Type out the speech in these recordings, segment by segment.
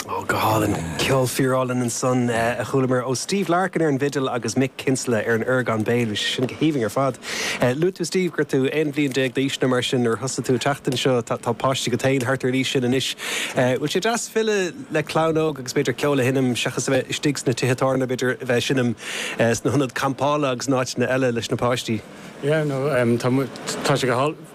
Oh, go hálainn. Ceol fíorálainn ansan a chualamar ó Steve Larkin ar an bhfidil agus Mick Kinsella ar an orgán béil. Bhí sé sin go haoibhinn ar fad. Luaigh tú, Steve, go raibh tú aon bhliain déag d'aois nó mar sin nuair a thosaigh tú ag teacht anseo. Tá páiste agat féin thart ar an aois sin anois. Bhfuil sé deas filleadh le clann óg agus b'fhéidir ceol a sheinm seachas a bheith istigh sna tithe tábhairne, b'fhéidir a bheith ag seinm sna hionaid campála agus in áiteanna eile leis na páistí? Yeah, no, tá sé go hálainn.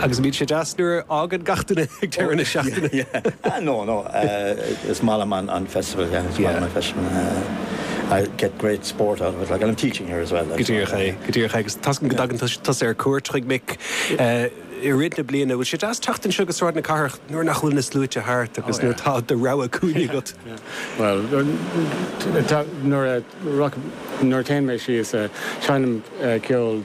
Agus bíonn sé deas nuair a fhágann gach duine ag deireadh na seachtaine. Yeah, no, no, is maith liom an festival, yeah, is maith liom an festival. I get great sport out of it, like I'm teaching here as well. Go díreach é, go díreach é agus toisc go dtagann tusa ar cuairt chuig Mick i rith na bliana. Bhfuil sé deas teacht anseo go Sráid na Cathrach nuair nach bhfuil na sluaite thart agus nuair atá do rogha cúinne agat? Bhuel, nuair a téann mé síos, seinim ceol.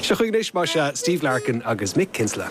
Seo chugainn anois, más ea, Steve Larkin agus Mick Kinsella.